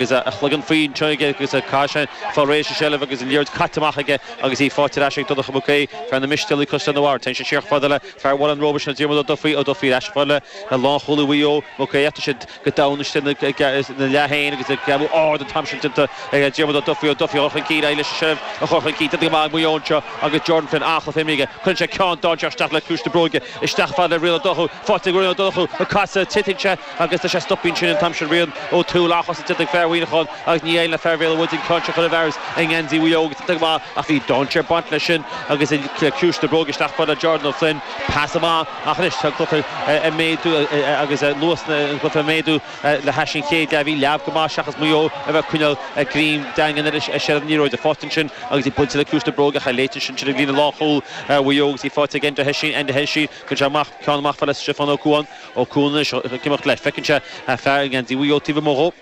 agus a chloigeann faoi anseo aige agus a cath sin fá réir sa tseilbh agus an liathróid caite amach aige agus í faighte ar ais ag Donncha Mac Aoidh, fear na Mistéalach Chaisleán an Bharraigh. Téann siad siar chomh fada le fear Bhaile an Róba sin, Diarmuid Ó Dufaí, Ó Dufaí ar ais chomh fada le lánchúlaí Mhaigh Eo, Mac Aodha. Tá siad go domhain istigh ina leath féin agus ag gearradh ard an t-am sin déanta ag Diarmuid Ó Dufaí. Ó Dufaí ag dul chun cinn, aghaidh leis an tseilbh a chur chun cinn, déanta go maith ag Maigh Eo anseo agus Jordan Flynn an-chluiche imeartha aige. Cuireann sé ceann dainséarach isteach le ciumhais na bróige, isteach fhad le Rian Ó Donnchú, faighte ag Rian Ó Donnchú, an casadh, titeann sé, agus tá sé stoptha ansin an t-am sin. Rian Ó Tuathail a chas sa Tiobraid fear Mhuineacháin agus Ní Éil na Fair Vale Woods an ceann seo chun a bhfearas i ngeansaí Mhaigh Eo agus iontach go maith ach bhí dainséar ag baint leis sin agus le ciumhais na bróige isteach fhad le Jordan Ó Floinn pas amach ach anois tá an cluiche ag méadú agus luas na an cluiche ag méadú le hais an chéad leath bhí leamh go maith seachas Maigh Eo a bheith ag coinneáil a greim daingean ar a séad an liathróid faighte ansin agus í buailte le ciumhais na bróige cha léitear sin sin ag líne lánchúil Mhaigh Eo agus í faighte ag Enda Heisín Enda Heisín cuireann sé ceann amach fhad le Stiofán Ó Cuain Ó Cuain anseo ag imeacht leis. Feiceann sé fear i ngeansaí Mhaigh Eo taobh amuigh dhó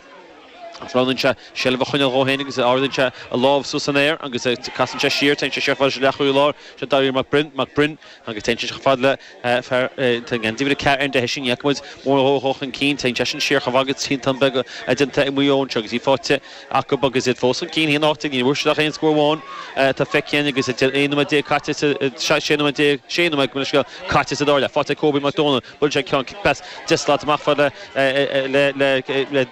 agus roghnaíonn sé seilbh a choinneáil dhó féin agus ardaíonn sé a lámh suas san aer agus casann sé siar. Téann sé siar chomh fada le leathchúlaí láir anseo, Dáithí Mac Briain, Mac Briain, agus téann sé chomh fada le fear atá i ngeansaí uimhir a ceathair, Enda Heisín, Iacobaids, mór dhó chun cinn. Téann seisean siar chomh fada agus triantán beag déanta ag Maigh Eo anseo agus í faighte. acu, agus iad fós chun cinn. Aon áit a ndíbhirt siad ach aon scór amháin atá feicthe again, agus idir aon nóiméad déag caite is sé nóiméad déag, sé nóiméad go minic scéal caite sa dara leath. Faighte ag Cóbie Mac Dónaill, buaileann sé ceann cic pas deich slat amach fhad le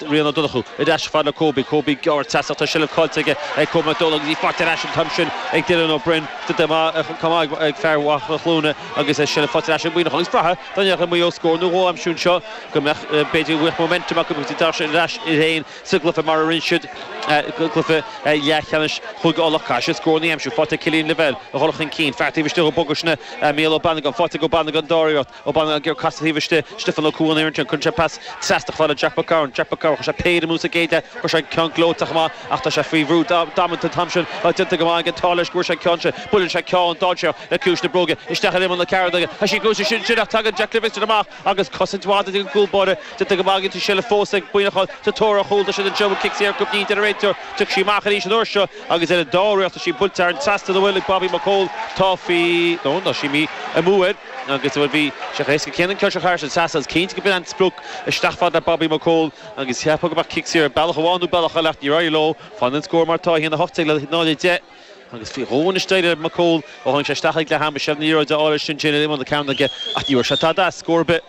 Rian Ó Donnchú. Ar ais fhad le Cóbie. Cóbie ag gearradh isteach, tá seilbh caillte aige ag Cóbie Mac Dónaill agus í faighte ar ais an t-am sin ag Dylan Ó Broin. Chomh maith ag fear Mhachaire Cluana agus a seilbh faighte ar ais ag Muineachán. Agus bhraithfeá dá ndéanfadh Maigh Eo scór nó dhó aimsiú anseo go mbeadh b'fhéidir rith momentum acu, agus d'fhág sé ar ais iad féin. sa gcluiche mar a rinne siad i gcluiche leathcheannais Chúige Uladh. Caithfidh siad scór a aimsiú, faighte ag Killian Lavelle a dhul chun cinn, fear taobh istigh dhó agus Mícheál Ó Banagáin, faighte ag Ó Banagáin ar an dara hiarracht, Ó Banagáin gear casta taobh istigh, Stiofán Ó Cuain an fhoireann sin, cuireann sé pas trasna fhad le Jack Mac Cearáin, Jack Mac Cearáin, chuir sé péire amú sa gcéad leath, chuir sé an ceann gleoite amach ach tá sé faoi bhrú damanta an t-am sin ach déanta go maith ag an Táilleir scór sé an ceann sin, buaileann sé ceann dainséarach le ciumhais na bróige isteach in imeall na cearnóige, tá sí gluaiste sin sin ach tagann Jack Livingstone amach, agus cosaint mhaith déanta ag an gcúl báire, déanta go maith aige anseo, seilbh fós ag Muineachán sa tóir ar chúl, tá siad anseo, bhuel cic saor go mnínn, deir an réiteoir, tiocfaidh sí amach arís an uair seo agus ar an dara hiarracht tá sí buailte thar an trasnán, an bhfuil, ag Bobby Mac Cóil, tá faoi, no, tá sí imithe amú air agus, bhuel bhí, sé chomh héasca céanna í a chiceáil thar an trasnán agus cinnte gurbh in é an sprioc isteach fhad le Bobby Mac Cóil agus cheapfá go mbeadh cic saor bealach amháin nó bealach eile ach níor éirigh leo, fanann an scór mar atá, 1, 18 le 0, 10. agus faoi dhó anois d'éirigh le Mac Cumhaill ó tháinig sé isteach ag leath ama. Seilbh na liathróide á fháil ansin, déanadh iomána cearna aige, ach ní raibh sé tada as scór ar bith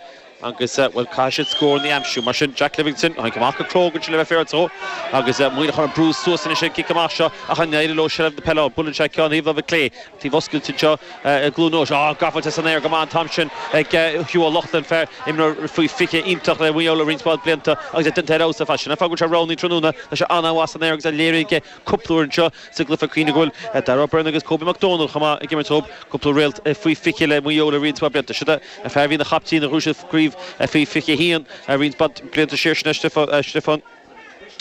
agus, bhuel, caithfidh siad scóranna a aimsiú. Mar sin, Jack Livingstone, tháinig amach go cróga ansin le bheith fair dhó agus Muineachán ag brú suas anois an cic amach seo ach an éireoidh leo seilbh na peile a bhualadh anseo ceann thaobh láimhe clé, taobh oscailte anseo i gCluain Eois. Á, gaibhte san aer go maith an t-am sin ag Hugh Ó Lochlainn, fear, imreoir faoi 20 iontach le Maigh Eo le roinnt mhaith blianta agus é déanta ar fheabhas as sin. An fáth go bhfuil sé roghnaithe tráthnóna, tá sé an-mhaith san aer agus é léirithe aige cúpla uair anseo sa gcluiche cuimhnigh go bhfuil Darragh Ó Beirn agus Kobe McDonald chomh maith ag imirt dhób, cúpla réalt faoi 20 le Maigh Eo le roinnt mhaith blianta. Seo é an fear a bhí ina chaptaen nuair a bhuaigh siad Craobh faoi 21 roinnt mhaith blianta siar, sin é Stiofán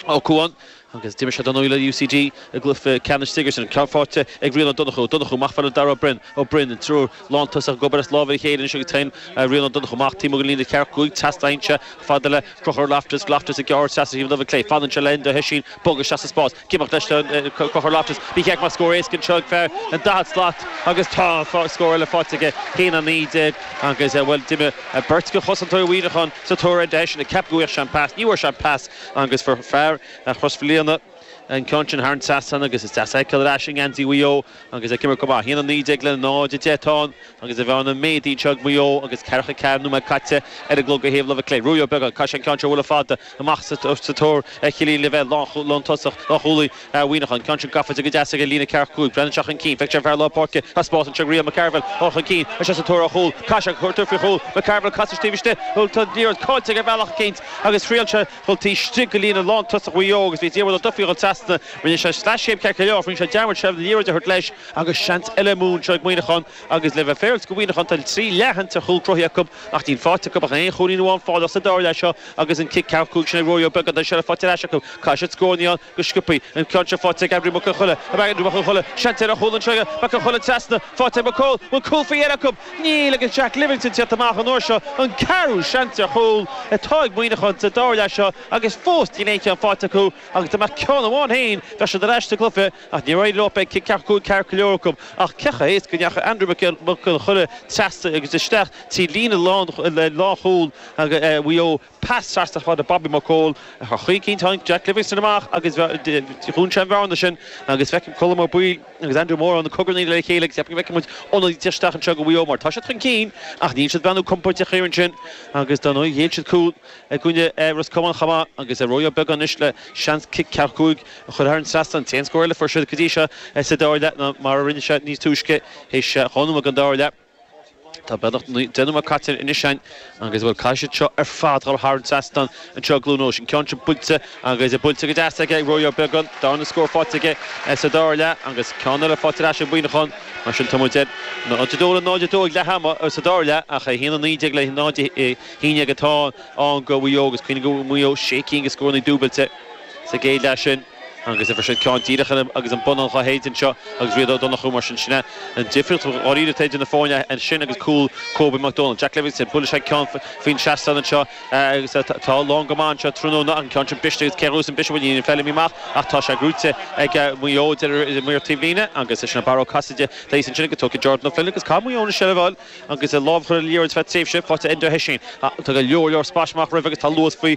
Ó Cadhain, agus d'imir sé dar ndóigh le UCD i gcluiche ceannais Sigerson, ceann faighte ag Rian Ó Donnchú. Ó Donnchú amach fad le Darragh Ó Beirn. Ó Beirn, an triúr lántosach ag obair as lámha a chéile anois agus téann Rian Ó Donnchú amach. Taobh amuigh den líne ceathracha cúig trasna ansin fad le Crochúr Loftus, Loftus, ag gearradh isteach ó thaobh na láimhe clé. Fanann sé le Enda Hession bogadh isteach sa spás. Ag imeacht leis an Crochúr Loftus. Ba cheart go mbeadh scór éasca anseo ag fear an daichead slat agus tá scór eile faighte aige. A haon a naoi déag agus, bhuel, d'imigh beirt de chosantóirí Mhuineacháin sa tóir ar Hession ag ceapadh go bhfuigheadh sé an pas. Ní bhfuair sé an pas agus fuair fear Chrois Mhaoilíona. an ceann sin thar an trasnán agus is deas a fheiceáil ar ais i ngeansaí Mhaigh Eo agus é ag imirt go maith. 1-19 le 0-10 atá ann agus an bhearna méadaithe anseo ag Maigh Eo agus ceathracha ceathair nóiméad caite ar an gclog ó thaobh láimhe clé. Ruairí Ó Beagáin, Tá sé an ceann seo bhualadh fada amach sa tóir ar Chillian Lavelle lántosach, lánchúlaí Mhuineacháin. An ceann sin gafa de go deas ag an líne ceathracha cúig. Breathnaíonn sé chun cinn, feictear an fear lár páirce, tá spás anseo ag Rian McCarvill, dul chun cinn leis sa tóir ar chúl. Caith sé, cuirtear faoi chúl. McCarvill, casadh taobh istigh, tá an liathróid caillte aige ar bhealach eicínt agus thriail sé A dhul taobh istigh de líne lántosach Mhaigh Eo agus bhí Diarmuid Ó Dufaigh ag dul trasna. Rinne sé sleaschéim ceart go leor ach rinne sé dearmad seilbh na liathróide a thabhairt leis agus seans eile amú anseo ag Muineachán agus le bheith féaráilte do Mhuineachán tá trí leathshans ar chúl cruthaithe acu ach níl faighte acu ach aon chúilín amháin faighte acu sa dara leath seo agus an cic ceathracha cúig sin ag Ruairí Ó Beagáin agus seilbh faighte ar ais acu. Caithfidh siad scórannaí a go sciobtha an ceann seo faighte ag Aindriú Mac Con Choille ab ea Aindriú Mac Con Choille, seans eile ar chúl ann, seo é Mac Con Choille trasna, faighte ag Mac Cóil, bhfuil cúl faoi dheireadh acu? Níl, agus Jack Livingstone ag tíocht amach an uair seo an ceathrú seans ar chúl atá ag Muineachán sa dara leath seo agus fós níl aon cheann faighte acu agus dá mbeadh ceann amháin féin bheadh siad ar ais sa gcluife ach níor éirigh leo beidh cic ceathracha cúig ceart go leor acu ach cé chomh héasca a ndeachaigh Aindriú Mac Con Choille trasna agus isteach trí líne lánchúl Mhaigh Eo Pas trasna fad le Bobby McCaul ach cinnte tháinig Jack Livingston amach agus dhún sé an bhearna sin agus feicim Colm Ó Baoill agus Andy Moran ag cogarnaíl le chéile agus ceapaim go bhfeicfidh muid ionadaí eile isteach anseo do Mhaigh Eo mar tá siad chun cinn ach níl siad ag breathnú compordach thiar ansin agus dar ndóigh ghéill siad cúl i gcoinne Ros Comáin chomh maith agus Ruairí Ó Beagáin anois le seans cic ceathracha cúig a chur thar an trasnán. An t-aon scór eile a fuair siad go dtí seo sa dara leath ná mar a rinne siad níos túisce théis dhá nóiméad den dara leath. Tá beagnach deich nóiméad caite anois ann agus a bhfuil caite siad seo ar fad ag dul thar an seastán anseo, tráthnóna, an ceann sin buailte agus buailte go deas aige ag Ruairí Ó Beagán, darna scór faighte aige sa dara leath agus ceann eile faighte ar ais ag Muineachán. Mar sin tá muid ar 0-2 ag leath ama sa dara leath ach 1-19 le 0-11 atá ann do Mhaigh Eo agus cuimhnigh go bhfuair Maigh Eo sé cinn de scórannaí dúbailte sa gcéad leath sin. Agus fuair siad ceann díreach agus an bonnán dhá shéideadh anseo agus Rian Ó Donnchú mar sin sin é an difríocht dháiríre idir na foirne ansin agus cúl Cóbie Mac Dónaill, Jack Livingston, buaileann sé ceann faoin seastán anseo atá lán go maith anseo tráthnóna an ceann sin briste agus cé a ghluaiseann biseadh iníon Feilimí amach ach tá sé gnóite ag Maigh Eo, Maor taobh líne agus sin Barra Ó Casaide thíos ansin agus tógfaidh Jordan Ó Floinn agus caithfidh Maigh Eo an seilbh a fháil. agus lámh a chur ar an liathróid ar feadh tréimhse faighte ag Enda Hession. Tá go leor leor spáis amach roimhe agus tá luas faoi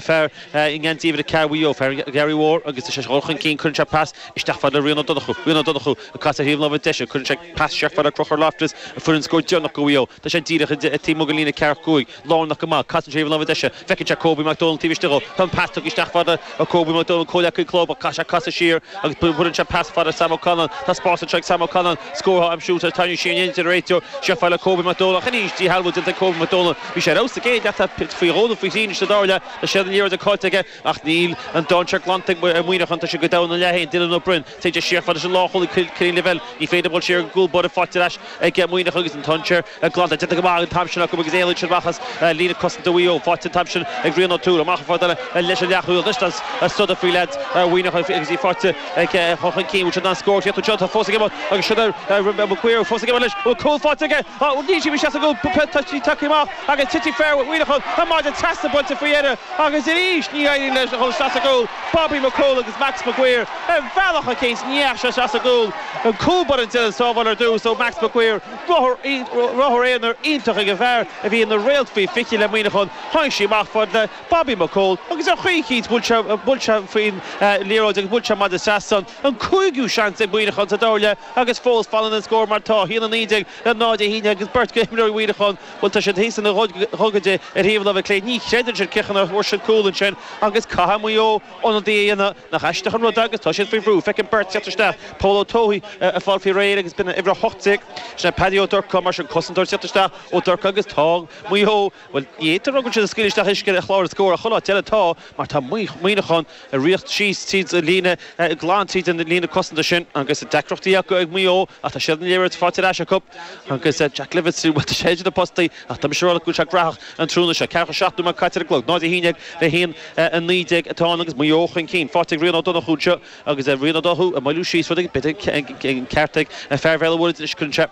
fear i ngeansaí uimhir a 4 Mhaigh Eo, fear an Gharraí Mhóir, agus tá sé ag dul chun cinn cuireann sé pas isteach fad le Rian Ó Donnchú. Rian Ó Donnchú ag casadh ar thaobh na láimhe deise, cuireann sé pas siar chomh fada le Conchúr Loftus, a fuair an scór deireanach do Mhaigh Eo. Tá sé díreach taobh amuigh den líne 45. lárnach go maith. Casann sé ar thaobh na láimhe deise. Feiceann sé Cóbí Mac Dónaill taobh istigh dhó. Tá an pas tugtha isteach fad le Cóbí Mac Dónaill, comhleacaí club, ach caithfidh sé casadh siar agus buaileann sé pas fada ar Sam Ó Canainn. Tá spás anseo ag Sam Ó Canainn. Scórtha á aimsiú tar éis tarraingt siar in éineacht lena réiteoir. Siar chomh fada le Cóbí Mac Dónaill ach arís díshealbhú déanta ar Cóbí Mac Dónaill. Bhí sé ar fheabhas sa gcéad leath, ach faoi dhó nó faoi thrí anois sa dara leath. Tá seilbh na liathróide caillte aige. Ach níl an dainséar glanta ag Muineachán, tá siad go domhain ina leath féin, Dylan Ó Broin. Téann sé siar fad leis an lánchúlaí Cillian Lavelle. Ní féidir a dhul siar ag an gcúl báire faighte ar ais ag Muineachán agus an dainséar glanta déanta go maith an t-am sin acu agus éalaíonn siad amach as líne cosanta Mhaigh Eo. Faighte an t-am sin ag Rian O'Toole. Amach an fad eile leis an leathchúlaí anois. Fuadar faoi leaids Mhuineacháin agus í faighte ag Dún Chaoin. Bhfuil siad in ann scór a chríochnú? Tá fós ag imeacht agus sin é Maguire. Fós ag imeacht leis. Bhfuil cúl faighte aige? Tá an dís amuigh as a gcúl, peil toisí tugtha amach agus titfidh fear Mhuineacháin an maide trasna, buailte faoi dheireadh agus arís ní éiríonn leis a dhul isteach sa gcúl. Bobby McCole agus Max Maguire ar bhealach eicínt ní dheachaigh sé sa gcúl an cúl báire ag déanamh sábháil ar dtús ó Max Maguire, ruathar aonair iontach ag an bhfear a bhí ina réalt faoi 20 le Muineachán, tháinig sí amach fad le Bobby McCole agus ar chaoi eicínt bhuail sé faoin liathróid agus bhuail sé an maide trasna. an cúigiú seans ag Muineachán sa dara leath agus fós fanann an scór mar atá, 1-19 le 0-11 agus beirt d'imreoirí Mhuineacháin, bhuel tá siad thíos ar a ngogaide ar thaobh na láimhe clé, ní chreideann siad cén chaoi nach bhfuair siad cúl ansin agus caithfidh Maigh Eo ionadaí a dhéanamh. Nach aisteach an rud é agus tá siad faoi bhrú, feicim beirt ag teacht isteach, Pól Ó Tuathaigh ag fáil faoi réir agus b'in an uimhir 18, sin é Paddy Ó Durcáin, mar sin cosantóir ag teacht isteach Ó Durcáin agus tá Maigh Eo. Bhuel, ní fhéadtar rugbaí tríd an scaoileadh isteach uisce a chláraigh scór ach chomh láidir is atá, mar tá Muineachán ag rith síos tríd an líne, glan tríd an líne cosanta sin agus deacrachtaí acu ag Maigh Eo ach tá siad aniar agus faighte ar ais acu agus Jack Livingston, bhuel, tá sé idir na postaí ach tá mise ag rá go bhfuil sé graitheach an tráthnóna seo. 47 nóiméad caite ar an gclog, 0-11 le 1-19 atá ann agus Maigh Eo chun cinn. Faighte ag Rian Ó Donnchú anseo agus Rian Ó Donnchú ag moilliú síos rud beag, b'fhéidir an ceart ag fear Bhéal an Mhuirthead anois, cuireann sé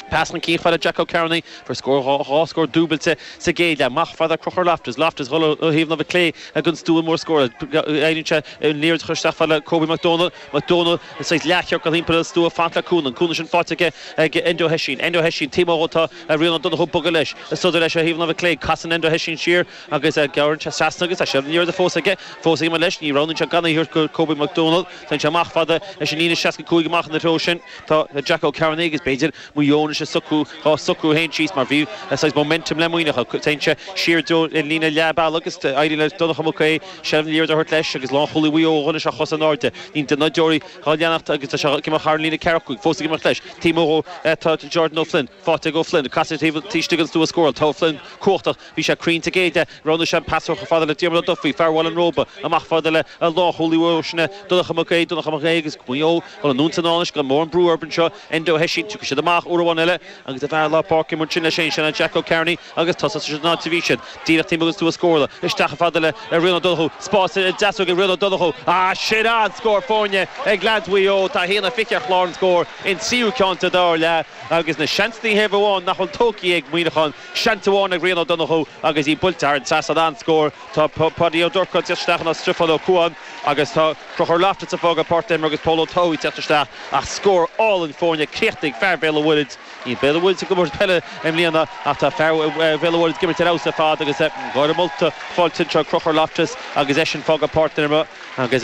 Pas chun cinn fad le Jack Ó Cearnaigh, fuair scór dhá scór dúbailte sa gcéad leath. Amach fad le Crochúr Loftus, Loftus ag dul ó thaobh na clé ag an stua mór scórála. Éiríonn sé an liathróid a chur isteach fad le Kobe McDonald. McDonald saghas leathchiorcal timpeall an stua, fad le Coen. Coen sin fágtha aige ag Enda Ó hOisín. Enda Ó hOisín taobh amuigh tá Rian Ó Donnchú ag bogadh leis. Ag sodar leis ó thaobh na clé. Casann Enda Ó hOisín siar agus gearrann sé trasna agus tá sé an liathróid fós aige. Fós aige mar leis. Ní roghnaíonn sé gan é a thabhairt go Kobe McDonald. Téann sé amach fad leis an líne 65 amach sa treo sin. Tá Jack Ó Cearnaigh agus, b'fhéidir, Maigh Eo anois ag socrú dhá socrú féin síos mar bhí saghas momentum le Muineachán. Téann sé siar den líne leath bealaigh agus éiríonn le Donncha Mac Aoidh seilbh na liathróide a thabhairt leis agus lánchúlaí Mhaigh Eo, anois, ar chos in airde. Níl duine ná deoraí dhá leanacht agus tá sé ag imeacht thar an líne 45, fós ag imeacht leis. Taobh amuigh dó tá Jordan Ó Floinn, fágtha ag Ó Floinn, ag casadh taobh istigh den stua scórála. Tá Ó Floinn cumhachtach. Bhí sé cruinn sa gcéad leath. Roghnaigh sé an pas siar chomh fada le Diarmaid Ó Dufaigh, fear Bhaile an Róba, amach fad le lánchúlaí arís sin é, Donncha Mac Aoidh, Donncha Mac Aoidh agus Maigh Eo, chun an ionsaí anois gan mórán brú orthu anseo, Enda Ó hOisín, tiocfaidh siad amach uair amháin eile agus a bheith lár páirce ansin leis féin, sin é Jack Ó Cearnaigh agus tosóidh siad san áit a bhí siad, díreach taobh amuigh den stua scórála, isteach chomh fada le Rian Ó Donnchú, spás ar a dheasóg ag Rian Ó Donnchú, ah sin an scór foirne ag leads Mhaigh Eo, tá 1-20 ar chlár an scóir in tríú ceann sa dara leath agus na seansanna thaobh amháin nach bhfuil tógtha ag Muineachán. Seans amháin ag Rian Ó Donnchú agus í buailte thar an trasnán an scór. Tá Pádaí Ó Durcáin ag teacht isteach in áit Stiofán Ó Comhain agus tá Crochúr Loftus ag fágáil páirc na himeartha agus Pól Ó Tuathaigh ag teacht isteach ach scór álainn foirne críochnaithe ag fear Bhéal an Mhuirthead. Níl Béal an Mhuirthead ag imirt peile i mbliana ach tá fear Bhéal an Mhuirthead ag imirt ar fheabhas ar fad agus gáir mholta á fáil ag Crochúr Loftus agus eisean ag fágáil páirc na himeartha agus